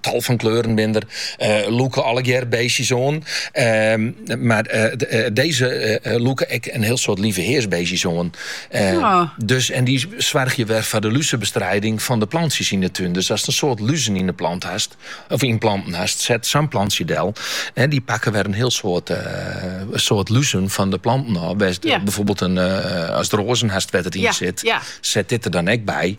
tal fan kleuren binne der, lûke allegear beestjes oan. Ehm, mar deze lûke ek in hiel soad lieveheersbeestjes oan. Ehm, ja. dus, en dy soargje wer foar de luzebestrijding fan de plantsjes yn de tún. Dus ast in soad luzen yn de plant hast, of yn planten hast, set sa'n plantsje del. En dy pakke wer in hiel soad, uh, soad luzen fan de planten ôf. Byfoarbyld in, uh, ast roazen hast wêr't it yn sit, set dit der dan ek by.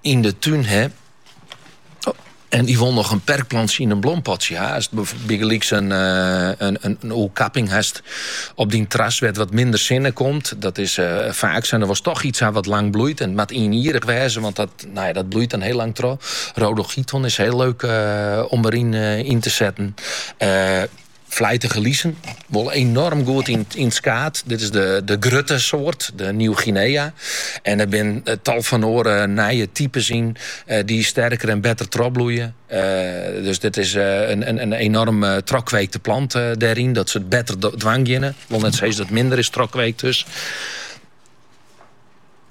yn de tún ha. En dy wol noch in perkplantsje yn in blompotsje ha. Ast bygelyks in, in, eh, in oerkapping hast op dyn terras wêr't wat minder sinne komt. Dat is uh, faak sa en dêr wolst toch iets ha wat lang bloeit. En it moat ienjierrich wêze, want dat, nou ja, dat bloeit dan hiel lang troch. Rhodochiton is hiel leuk uh, om deryn uh, yn te setten. Flijtige lizen, wol enorm goed yn, yn skaat. Dit is de, de grutte soort, de Nieuw-Guinea. En er zijn eh, tal van oren eh, nije types in eh, die sterker en beter trobloeien. dus dit is een, een, een enorm uh, trokweekte plant daarin, dat ze het beter dwangjennen. Wel net steeds dat minder is trokweekt dus.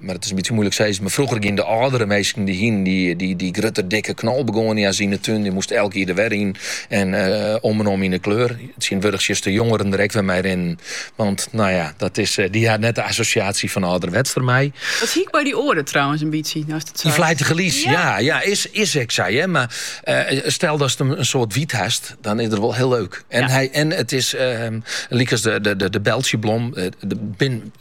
Mar it is in bytsje moeilik sizzen. Mar frûger gienen de âldere minsken dy hienen dy grutte dikke knolbegoania's yn 'e tún. Dy moasten elk jier der wer yn en om en om yn 'e kleur. Tsjintwurdich sjochst de jongeren der ek wer mei rinnen. Want no ja, dat is, dy ha net de assosjaasje fan âlderwets dermei. Dat hie ik by dy oare trouwens in bytsje, no'st it seit. Dy flijtige lies, ja, ja, is ek sa, hear. Mar stel datst in soad wyt hast, dan is dat wol hiel leuk. En it is, lykas de Beltsjeblom, der binne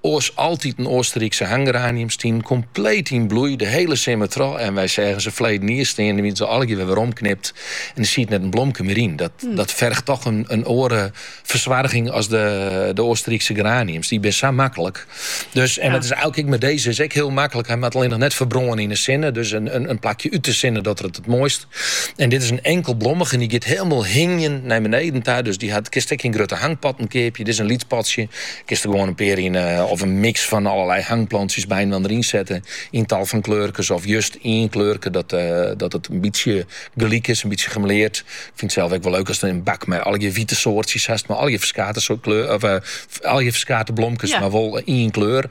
Oars altyd in Oasterrykse hanggeranium stienen kompleet yn bloei de hiele simmer troch en wy seagen se ferleden jier stean, dan wiene se allegear wer omknipt en der siet net in blomke mear yn. Dat ferget toch in oare fersoarging as de Oasterrykse geraniums, dy binne sa maklik. Dus en dat is eilk ek mei dizze, is ek hiel maklik, hy moat allinnich net ferbrâne yn 'e sinne, dus in plakje út 'e sinne, docht er it it moaist. En dit is in enkelblommige en dy giet hielendal hingjen nei beneden ta. Dus dy hat, kinst ek yn grutte hangpotten keapje. Dit is in lyts potsje. Kinst der gewoan in pear yn eh, of in miks fan allerlei hangplantsjes by inoar yn sette. Yn tal fan kleurkes of just ien kleurke dat, eh, dat it in bytsje gelyk is, in bytsje gemêleard. Ik fynt sels ek wol leuk aste in bak mei allegear wite soartsjes hast, mei allegear ferskate soarten kleur, of eh, allegear ferskate blomkes, Ja. mar wol ien kleur.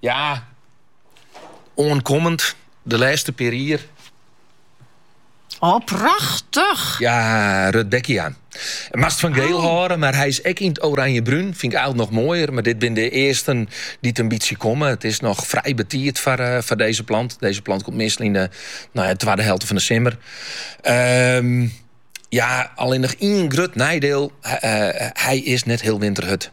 Ja, oankommend de lêste pear jier. Oh, prachtich! Ja, Rudbeckia. Moatst fan giel oh. hâlde, mar hy is ek yn it oranje-brún. Fyn ik eil noch moaier, mar dit bin de earsten dy't in bytsje komme. It is noch frij betiid foar eh, deze plant. Deze plant komt meastal yn de nou ja, twadde helte fan de simmer. Ehm, ja, allinnich ien grut neidiel. Hy eh, is net hiel winterhurd.